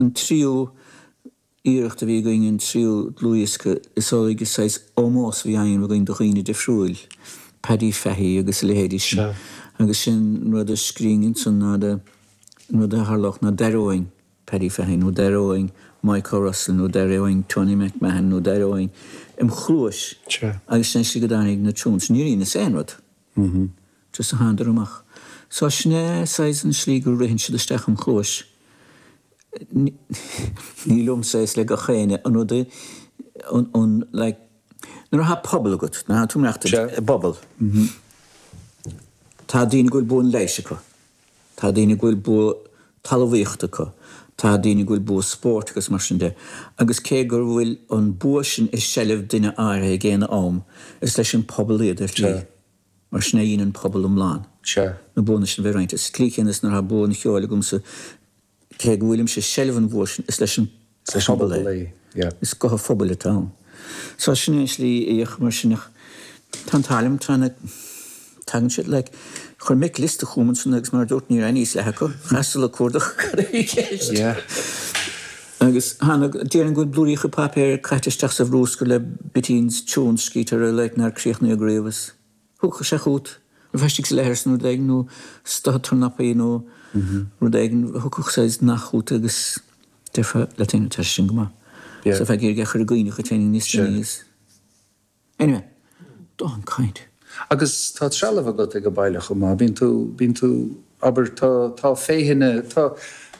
An tríú iarracht a bhí againn, an tríú dlúthdhiosca is dóigh is saghas ómós a bhí ann againn do dhaoine difriúil, Paddy Fahy agus a leithéidí sin, agus sin an rud a scríobhainn ansan ná de, an rud a tharlódh ná d'aireoinn Paddy Fahy nó d'aireoinn Micho Russell nó d'aireoinn Tony McMahon nó d'aireoinn im chluais, agus sin é an slí go dtáinig na tunes. Níor dheineas aon rud. amháin, just a thánadar amach. So sin é saghas an slí gur ritheann siad isteach im chluais. Ní liomsa é is le gach éinne an rud a, an, like, nuair atá pobal agat, nuair atá tú ag imeacht i bpobal, tá daoine go bhfuil bua an leighis acu. Tá daoine go bhfuil bua talamhaíochta acu, tá daoine go bhfuil bua spóirt agus mar sin de, agus cé gur bhfuil an bua sin i seilbh duine áirithe ag aon am, is leis an pobal iad ar shlí, mar sin a dhéanann pobal iomlán na buanna sin a bheith roinnte. Sa tslí chéanna is nuair atá bua an cheoil agamsa, cé go bhfuilimse i seilbh an bhua sin, is leis an bpobal é. Is guth an phobail atá ann. So sin é an slí a fhéachaim air sin ach tá an t-ádh liom, tá na, tagann siad like, chuir Mick liosta chugam ansan agus mar a dúrt ní raibh aon fhios leath acu, chaitheas dul ag cuardach cad a bhí i gceist. Agus tháinig, déarfainn go bhfuil blúiríocha paipéir caite isteach sa bhruscar le bitties, tunes scríte orthu like nár críochnaíodh riamh. Is. Thiocfadh sé chugat is tú istigh sa leithreas nó rud éigin nó ag stoitheadh tornapaí nó rud éigin a thiocfadh sé isteach chugat agus déarfá leat féin tá sé sin go maith. Sa feadh géar géar chuir a gcaoineadh a teine níos déanaí agus anyway, don't kind. Agus tá trealamh agat ag an baile chomh maith. Bíonn tú, bíonn tú, abair, tá, tá féitheanna, tá,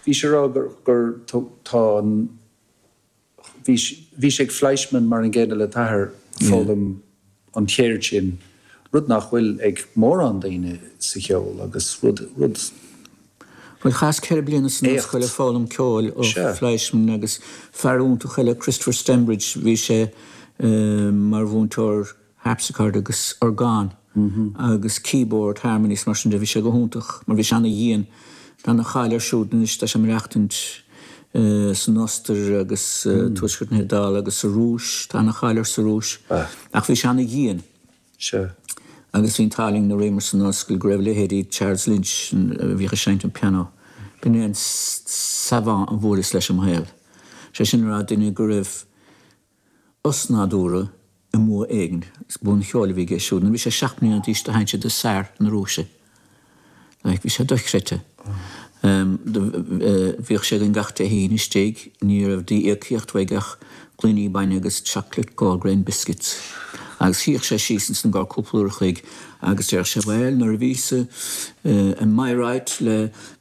bhí sé á rá gur, gur tá an, Bhís-se ag Fleischmann mar an gcéanna le t'athair, foghlaim an cheird sin, rud nach bhfuil ag mórán daoine sa cheol, agus rud, rud, Bhuel, chaitheas ceithre bliana san ollscoil ag foghlaim ceoil ó Fleischmann, agus fear iontach eile, Christopher Stembridge, bhí sé mar mhúinteoir, harpsichord agus orgán agus keyboard harmony is mar sin de. Bhí sé go hiontach mar bhí sé an-dhian. Tá ana-cháil air siúd anois, tá sé ag maireachtaint san Ostair agus tuaisceart na hIodála agus sa Rúis, tá ana-cháil air sa Rúis. Ach bhí sé ana-dhian. Sure. Agus bhí an t-ádh linn nuair a bhíomar san ollscoil go raibh leithéidí Charles Lynch a bhíodh ag seinnt an piano. B'in é an savant a bhuaileas leis i mo shaol. Sé sin a rá duine go raibh. osnádúrtha i mbua éigin is bua an cheoil a bhí aige siúd nuair a bhí sé seacht mbliana d'aois do sheinn sé do Tsar na Rúise. Like bhí sé dochreidte. Bhíodh sé againn gach Dé hAoine istigh, ní raibh d'íocaíocht uaidh ach gloine bainne agus chocolate Goldgrain biscuits. Agus shuíodh sé síos ansan i gcomhair cúpla uair a chloig agus déarfadh sé bhuel nuair a bhíos i Bayreuth le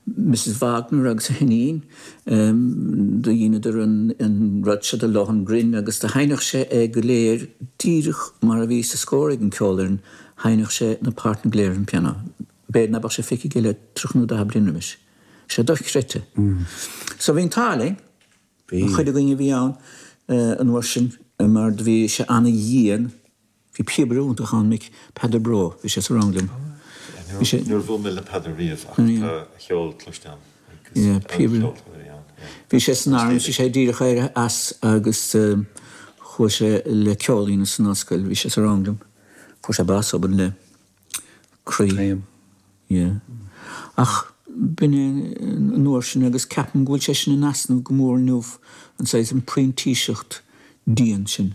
Mrs Wagner agus a hiníon Do dheineadar an rud seo de Lohengrin agus do sheinneadh sé é go léir díreach mar a bhí sa scór ag an ceolfhoireann, sheinneadh sé na páirteanna go léir ar an bpianó. B'fhéidir ná beadh sé feicthe aige le tríocha nó daichead bliain roimis. Bhí sé dochreidte. So bhí an t-ádh linn, an chuid againn a bhí ann an uair sin, mar do bhí sé ana-dhian. Bhí píobaire iontach ann, Mick, Peadar Broe, bhí sé sa rang liom. Bhí sé. Níor bhuail mé le Peadar riamh ach tá a cheol cloiste agam agus an-cheoltóir a bhí ann, yeah. Bhí sé san arm, bhí sé díreach éirithe as agus chuaigh sé le ceol san ollscoil, bhí sé sa rang liom. Fuair sé bás obann le croí. Taom. Yeah. Ach b'in é an uair sin agus ceapaim go bhfuil sé sin in easnamh go mór inniu, an saghas, an printíseacht dhian sin.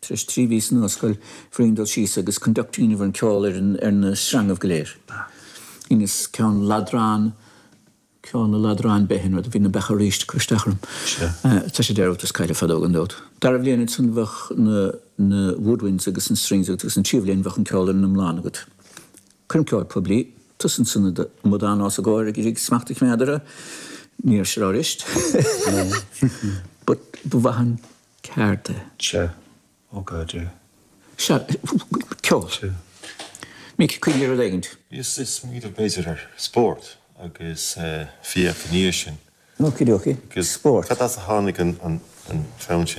Tar éis trí mhí san ollscoil, bhruínn, dul síos agus conducting a dhéanamh ar an ceol ar ar na sreangaibh go léir. Dheineas ceann ladrann, ceol na ladrann beith in rud, bhí na beacha arís ag cur isteach orm. Tá sé dearúdta is caillte fadó gan dabht. Dara bhliain ansan bheadh na na woodwinds agus na strings agat agus an tríú bhliain bheadh an ceol ar an iomlán agat. Cuiream ceol poiblí, tusa ansan i do mhaidrín os a gcomhair ag iarraidh smacht a choimeád ar a, ní ar seo arist, but ba mhaith an. Céard é? Cia. Ó God, yeah. Sea, ceol. Cia. Mick, cuimhnigh ar rud éigin. Ag smaoineamh b'fhéidir ar spórt agus fiach ina dhiaidh sin. Okie dokie. Spórt. Cad as a tháinig an fonn sin?